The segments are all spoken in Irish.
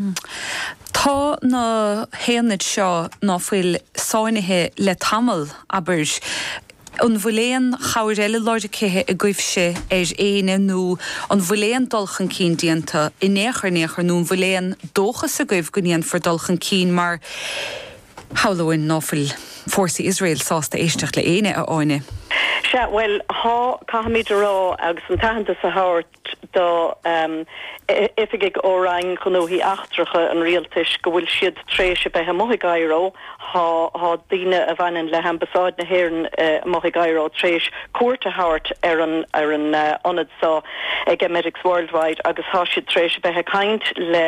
Tá na haonaid seo nó an fhuil sáinnithe le tamall, abair. An bhfuil aon chabhair eile lorgtha agaibhse ar éinne nó an bhfuil aon dul chun cinn déanta in aon chor in aon chor nó an bhfuil aon dóchas agaibh go ndéanfar dul chun cinn mar shamhlóinn ná fuil fórsaí Iosrael sásta éisteacht le éinne, a Áine? Sea, bhuel, tá, caithfimid a rá agus an t-aitheantas a thabhairt do oifigigh ó Roinn Ghnóthaí Eachtracha an Rialtais go bhfuil siad tar éis a bheith amuigh i gCaireo, tá daoine a bhaineann le hAmbasáid na hÉireann amuigh i gCaireo tar éis cuairt a thabhairt ar an ar an ionad so ag Emetics Worldwide agus tá siad tar éis a bheith ag caint le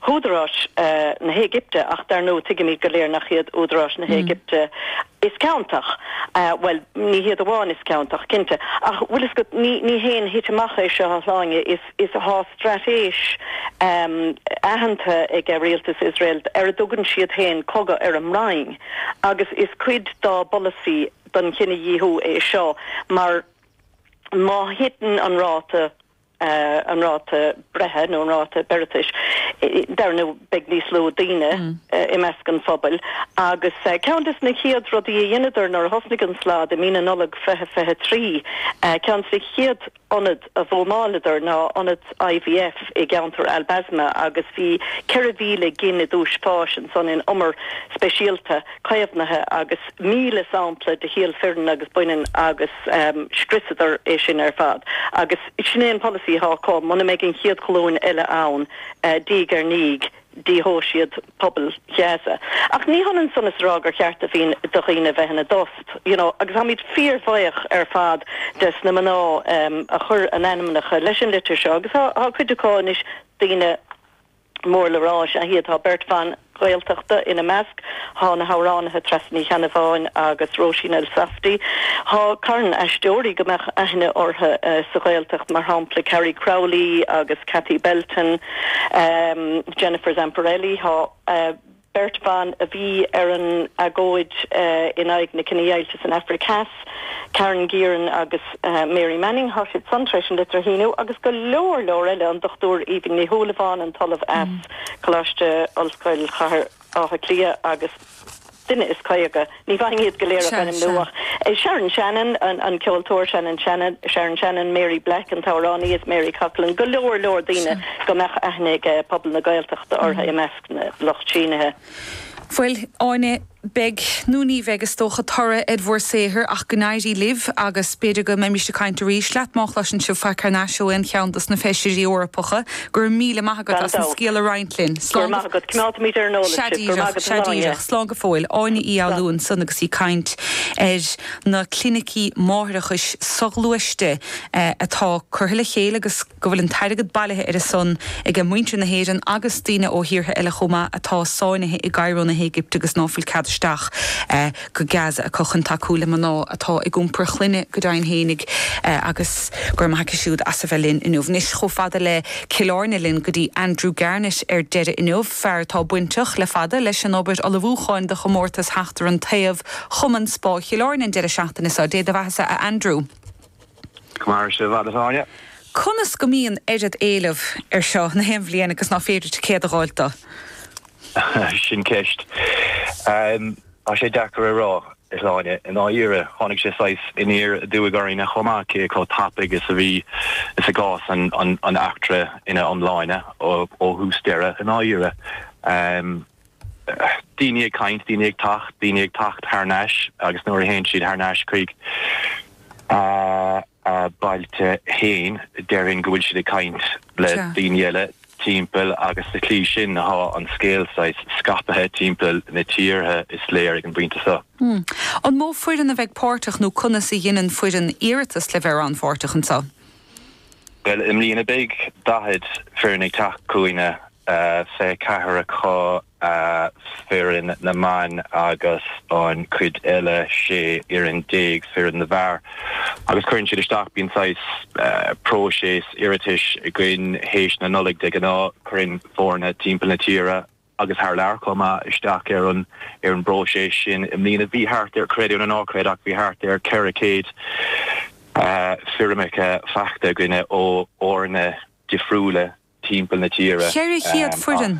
húdaráis na hÉigipte ach dar ndóigh tuigimid go léir nach iad údaráis na hÉigipte Is ciontach? Bhuel, ní hiad amháin is ciontach, cinnte, ach bhuel, is go, ní, ní haon thitim amach é seo a Shláine, is, is, thá straitéis aitheanta ag rialtas Iosrael ar a dtugann siad féin cogadh ar an mbroinn agus is cuid dá bpolasaí den chinedhíothú é seo mar má thiteann an ráta an ráta breithe nó an ráta beireatais,, dar ndóigh beidh níos lú daoine i measc an phobail agus ceann des na chéad rudaí a dheineadar nuair a thosnaigh an slad i mí na Nollag 2023, ceann des na chéad ionaid a bhuamáileadar ná ionad IVF i gceantar Al Basma agus bhí 4,000 gin i dtús fáis ansan in umar speisialta caomhnaithe agus 1,000 sampla de shíol fireann agus baineann agus scriosadar é sin ar fad. Agus sin é an polasaí athá acu, muna mbeidh an chéad ghlúin eile ann diaidh ar ndiaidh, díothóidh siad pobal Ghaza. Ach ní hionann san is a rá gur cheart do dhaoine a bheith ina dtost, you know, agus tháimid fíorbhaoch ar fad des na mná a chuir a n-ainmneacha leis an litir seo agus thá cuid acu anois daoine mór le rá, is ea iad, tá beirt bhan Ghaeltachta ina measc. Thá na hamhránaithe Treasa Ní Cheannabháin agus Róisín Elsafty. Thá carn aisteoirí go mbeadh aithne orthu sa Ghaeltacht, mar shampla Carrie Crowley agus Cathy Belton, Jennifer Zamparelli. Tá. beirt bhan a bhí ar an agóid in aghaidh na cinedheighilte san Afraic Theas, Karen Gearan agus Mary Manning, thá siad san tar éis an litir a shíniú, agus go leor leor eile, an Dr Aoibhinn Ní Shúilleabháin, an tOllamh as Coláiste Ollscoil Chathair Átha Cliath agus duine is caoga. Ní fhéadfainn iad go léir a ainmniú ach. Sharon Shannon, an ceoltóir, Sharon Shannon, Sharon Shannon, Mary Black, an t-amhránaí, is Mary Coughlan, go leor leor daoine go mbeadh aithne ag pobal na Gaeltachta orthu i measc na lucht sínithe. Bhuel, a Áine, beidh nó ní bheidh, is dócha, toradh ar bhur saothar ach go n-éirí libh agus b'fhéidir go mbeimis ag caint arís leat má chloiseann sibh faic thar n-ais ó aon cheann dos na feisirí Eorpacha. Go raibh míle maith agat as an scéal a roinnt linn. Slán go. Go raibh maith agat. Coimeádfaimid ar an eolas sibh. Go raibh maith agat, a Áine. Sea díreach. Slán go fóill. Áine Uí Fhoghlú ansan agus í ag caint ar na clinicí máithreachais soghluaiste atá curtha le chéile agus go bhfuil an t-airgead bailithe ar a son aige muintir na hÉireann agus daoine ó thíortha eile chomh maith atá sáinnithe i gCairo na hÉigipte agus ná fuil cead isteach go Gaza acu chun tacú le mná atá ag iompar clainne go deimhin fhéinig agus go raibh maith aici siúd as a bheith linn inniu. Anois chomh fada le Cill Airne linn go dtí Andrew Garnett ar deireadh inniu, fear atá bainteach le fada leis an obair ullmhúcháin do chomórtas Seachtar an Taobh Chumann Spá Chill Airne an deireadh seachtaine seo. Dé do bheathasa a Andrew. Go maire sé i bhfad a Áine. Conas go mbíonn oiread éileamh ar seo na haon bhliain agus ná féidir ticéad a dh'fháilt do? Sin ceist. Tá sé deacair a rá, a Áine. I ndáiríre, tháinig sé saghas aniar aduaidh orainn chomh maith, cé chomh tapaidh is a bhí is i gcás an eachtra ina iomláine, ó thús deireadh. I ndáiríre, daoine ag caint, daoine ag teacht, daoine ag teacht thar n-ais, agus nuair a théann siad thar n-ais chuig. a mbailte féin, déarfainn go bhfuil siad ag caint le daoine eile timpeall agus sa tslí sin tá an scéal saghas scaipthe timpeall na tíre, is léir, ag an bpointe seo. An mó foireann a bheidh páirteach nó conas a dheineann foireann iarratas le bheith rannpháirteach anseo? Bhuel, i mbliana beidh 40 foireann ag teacht chughainne, 24 acu foireann na mban agus an chuid eile, 16 fhoireann foireann na bhfear, agus cuireann siad isteach, bíonn saghas próiseas iarratais againn théis na Nollag de ghnáth, cuireann foirne timpeall na tíre agus thar lear chomh maith isteach ar an bpróiseas sin. I mbliana bhí thart ar, creid é nó ná creid, ach bhí thart ar 400 foirmeacha faighte againne ó fhoirne difriúla timpeall na tíre. Cheithre chéad foireann?